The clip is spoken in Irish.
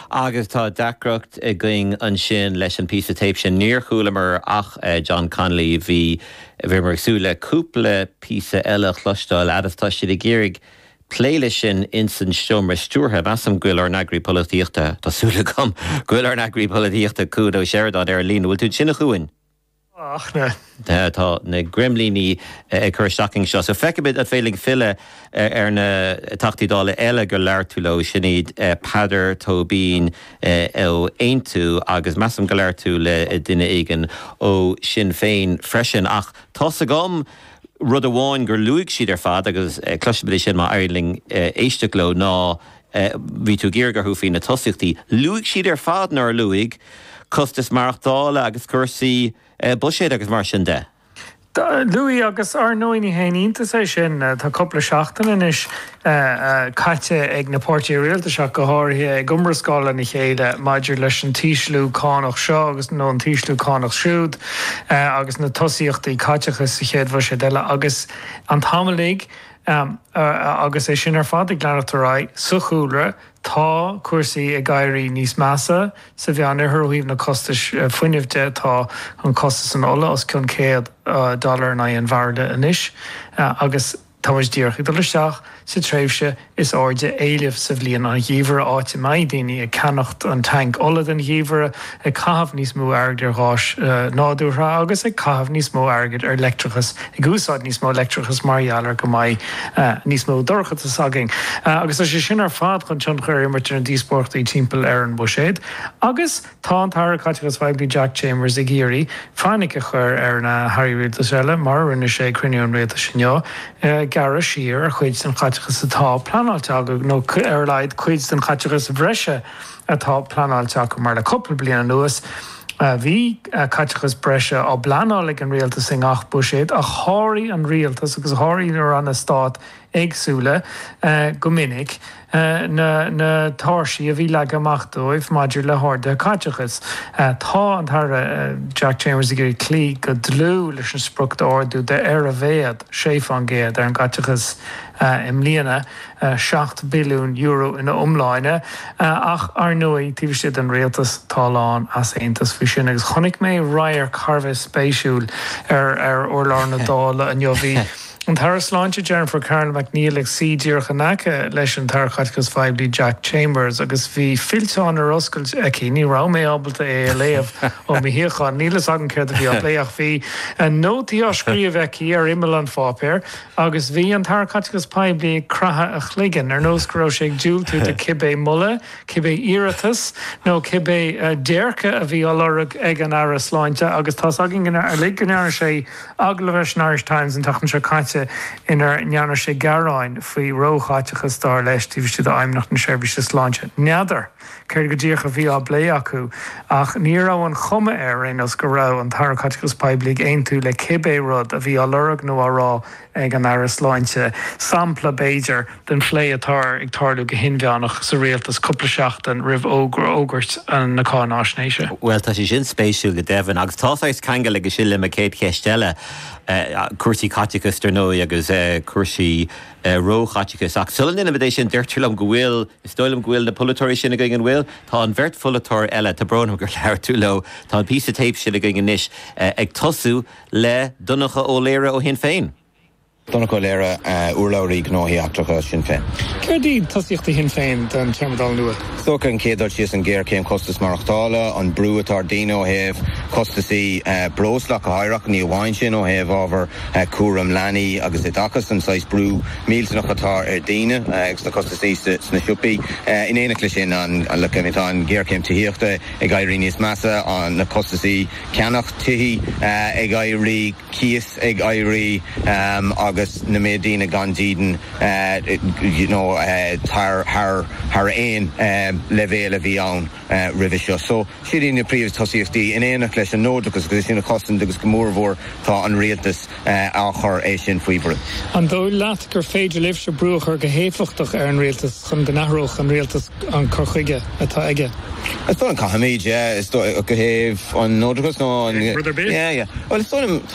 Agus tá deacracht againn ansin leis an píosa téip sin, níor chualamar ach John Connolly, bhí, bhíomar ag súil le cúpla píosa eile a chloisteáil fhad is tá siad ag iarraidh plé leis sin ins an seomra stiúrtha. Measaim go bhfuil ár n-eagraí polaitíochta, tá súil agam go bhfuil ár n-eagraí polaitíochta, Cuan Ó Seireadáin, ar an líne. Bhfuil tú ansin a Chuain? Tá na greimlíní ag cur isteach orainn anseo. So feicimid an féidir linn filleadh ar na Teachtaí Dála eile gur labhair tú leo, sin iad Peadar Tóibín ó Aontú agus measaim gur labhair tú le duine éigin ó Sinn Féin freisin. Ach tá's agam rud amháin gur luaigh siad ar fad agus cloisimid é sin má éiríonn linn éisteacht leo ná, Eh, bhí tú ag fiafraí orthu faoi na tosaíochtaí. Luaigh siad ar fad, nár luaigh? Costais maireachtála agus cúrsaí, eh, buiséid agus mar sin de. Luaigh, agus ar ndóigh ní haon iontas é sin. Eh, tá cúpla seachtain anois, eh, eh, caite ag na páirtithe rialtais ach go háirithe ag iomrascáil lena chéile maidir leis an t-ísliú cánach seo agus, nó an t-ísliú cánach siúd, eh, agus na tosaíochtaí caiteachais sa chéad bhuiséad eile agus an t-am uilig, Am, agus é sin ar fad ag leanacht ar aghaidh, sa chúlra tá cúrsaí ag éirí níos measa, sa Mheánoirthear ó thaobh na costais fuinnimh de tá an costas an ola os cionn céad dollar in aghaidh an bhairille anois agus tá muid díreach ag dul isteach sa tréimhse is airde éilimh sa bhliain, an geimhreadh, áit a mbeidh daoine ag ceannacht an tank ola don gheimhreadh. ag caitheamh níos mó airgid ar gháis nádúrtha agus ag caitheamh níos mó airgid ar leictreachas, ag úsáid níos mó leictreachais mar gheall ar go mbeidh níos mó dorchadais againn. Agus tá sé sin ar fad chun tionchar a imirt ar na díospóireachtaí timpeall ar an bhuiséad agus tá an tAire Caiteachais Phoiblí Jack Chambers ag iarraidh fainic a chur ar na hAirí Rialtais eile, mar a rinne sé ag cruinniú an Rialtais inniu, gearradh siar ar chuid den chaiteachas atá pleanáilte acu, nó ar a laghad cuid den chaiteachas bhreise. atá pleanáilte acu, mar le cúpla bliain anuas bhí caiteachas breise á bpleanáil ag an rialtas i ngach buiséad, ach sháraigh an rialtas agus sháraigh na ranna stáit éagsúla go minic na tairsí a bhí leagtha amach dóibh maidir le harduithe caiteachais. Tá an tAire Jack Chambers ag iarraidh cloí go dlúth leis an sprioc d'ardú de ar a mhéad 6% ar an gcaiteachas i mbliana, €7 bhilliún ina iomláine, ach ar ndóigh, taobh istigh den rialtas, tá a lán easaontais faoi sin, agus chonaic mé radharc thar a bheith spéisiúil ar urlár na Dála inniu, bhí an tAire Sláinte Jennifer Carroll MacNeill ag suí díreach in aice leis an tAire Caiteachais Phoiblí Jack Chambers, agus bhí fillteán ar oscailt aici, ní raibh mé ábalta é a léamh ó mo shuíochán, níl a fhios agam céard a bhí á phlé, ach bhí nótaí á scríobh aici ar imeall an pháipéir. Agus bhí an tAire Caiteachais Poiblí ag craitheadh a chloiginn, ar nós go raibh sé ag diúltú do cibé moladh, cibé iarratas, nó cibé déirce a bhí á lorg ag an Aire Sláinte, agus tá's againn uilig go ndearna sé agallamh leis an Irish Times an tseachtain seo caite inar ndearna sé gearáin faoi róchaiteachas, dar leis, taobh istigh d'Fheidhmeannacht na Seirbhíse Sláinte. N'fheadar. Céard go díreach a bhí á bplé acu? Ach ní raibh an chuma ar aon nós go raibh an tAire Caiteachais Poiblí ag aontú le cibé rud a bhí á lorg nó á rá ag an Aire Sláinte. Sampla, b'fhéidir, den phlé atá ag tarlú go hinmheánach sa rialtas cúpla seachtain roimh fhógairt na cáináisnéise. Bhuel, tá sé sin spéisiúil go deimhin. Agus tá saghas ceangail aige sin le mo chéad cheist eile, cúrsaí caiteachais, dar ndóigh, agus cúrsaí Eh, ró-chaiteachais. Ach sula ndéanaimid é sin, deirtear liom go bhfuil, is dóigh liom go bhfuil na polaiteoirí sin againn, an bhfuil? Tá an bheirt pholaiteoir eile, tá brón orm gur labhair tú leo, tá an píosa tape sin againn anois, eh, ag tosú le Donncha Ó Laoire ó Shinn Féin. Donncha Ó Laoire, eh, urlabhraí gnóthaí eachtracha Shinn Féin. Céard iad tosaíochtaí Shinn Féin don téarma Dála nua? Is dócha an chéad dul síos an ghéarchéim chostas maireachtála, an brú atá ar daoine ó thaobh costasaí, eh, breosla go háirithe ach ní amháin sin, ó thaobh ábhar, cúram leanaí agus oideachas, an saghas brú millteanach atá ar daoine agus na costaisí sna siopaí. In éineacht le sin, tá an ghéarchéim tithíochta ag éirí níos measa, na costaisí ceannach tithí ag éirí, cíos ag éirí agus na mílte daoine gan dídean thar aon leibhéal a bhí ann. roimhe seo. So, siad í na príomh tosaíochtaí, in éineacht leis an neodrachas, agus é sin a chosaint agus go mór mhór tá an rialtas á chur é sin faoi bhrú. An dóigh leat gur féidir libhse brú a chur go héifeachtach ar an rialtas chun go n-athródh an rialtas an cur chuige atá aige? Is dóigh, caithfimid, yeah, is dóigh, ó thaobh an neodrachas nó an. Rud ar bith? Yeah, yeah. Bhuel, is dóigh liom.